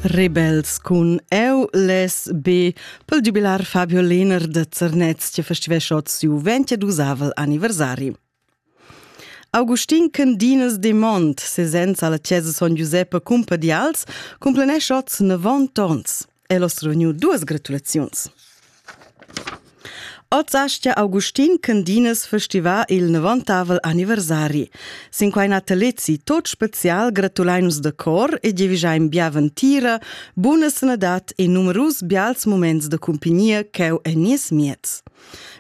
Rebels cun Eu les be pel giubilar Fabio Lehner da Zernez che festivescha siu 22 anniversari. Augustin Candinas de Mont, sesenza alla chiesa Son Giuseppe Cumpadials, cumplenesce oz 90 ons. El ho reuniu duas gratulaziuns. Oz astga Augustin Candines festivar il novantavel anniversari. Sin quai natalezi tot special gratulein nus de cor e giavischein bia ventira, buna sanadad e numerus bials moments de cumpignia cheu en nies miez.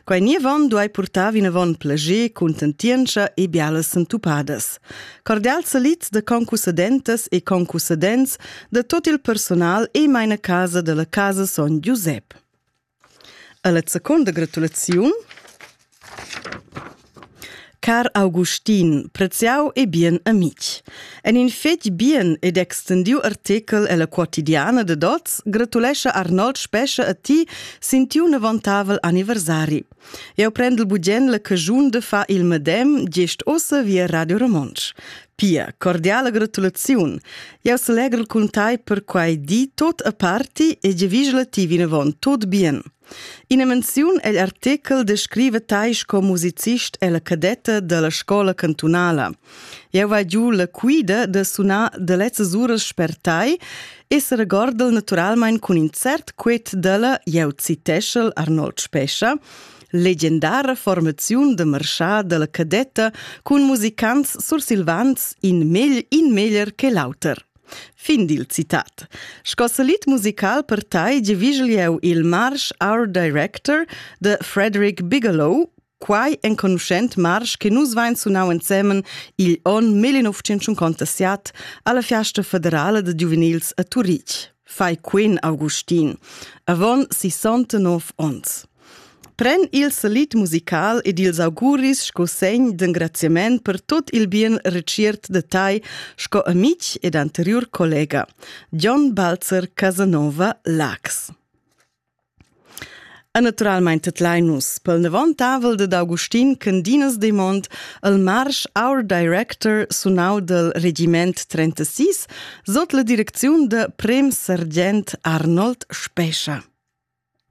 Quei nievan duai purtar vinavon plager, contentientscha e bialas sentupadas. Cordial salit de concussedentas e concussedents de tot il personal e meine casa della casa son Giusep. Alla seconda gratulazione Car Augustin, preziau e bien amic. En in fetg bien ed extendiu artikel ella quotidiana de Dots gratulescha Arnold Spescha a ti sin tiu nevantavel anniversari. Eu prendel bugen la caschun da far il medem gest ossa via Radio Romontsch. Pia, cordiala gratulaziun. Eu selegel cun tai per quai di tot a parti e giavigela ti vinavon tot bien. Ina menziun egl artichel descriva tai sco musicist ella cadetta dalla scola cantunala. Eu va giu la quida da sunar da lezzas uras per tai e se regorda'l naturalmaing cun in cert quet dalla, eu citescha'l Arnold Spescha, legendara formaziun da marchà da la cadetta cun musicants sursilvans in megl in meglier che l'auter. Fin dil citat. Sco salit musical per tai giavigel eu il Marsh Art Director de Frederick Bigelow, Quai enconuschent marsch che nus vain sunau ensemen igl onn 1957 alla Fiasta federala da giuvenils a Turitg, fai Queen Augustin, avon 69 onns. Pren il salit musical ed ils auguris sco segn d'engraziament per tot il bien reciert de tai sco amic ed anterior collega, John Balzer Casanova Lax. E naturalmein tedlein nus plenavontavel dad Augustin Candinas Demont el marsch Our Director sunau dal regiment 36 sot la direcziun da prem sergent Arnold Spescha.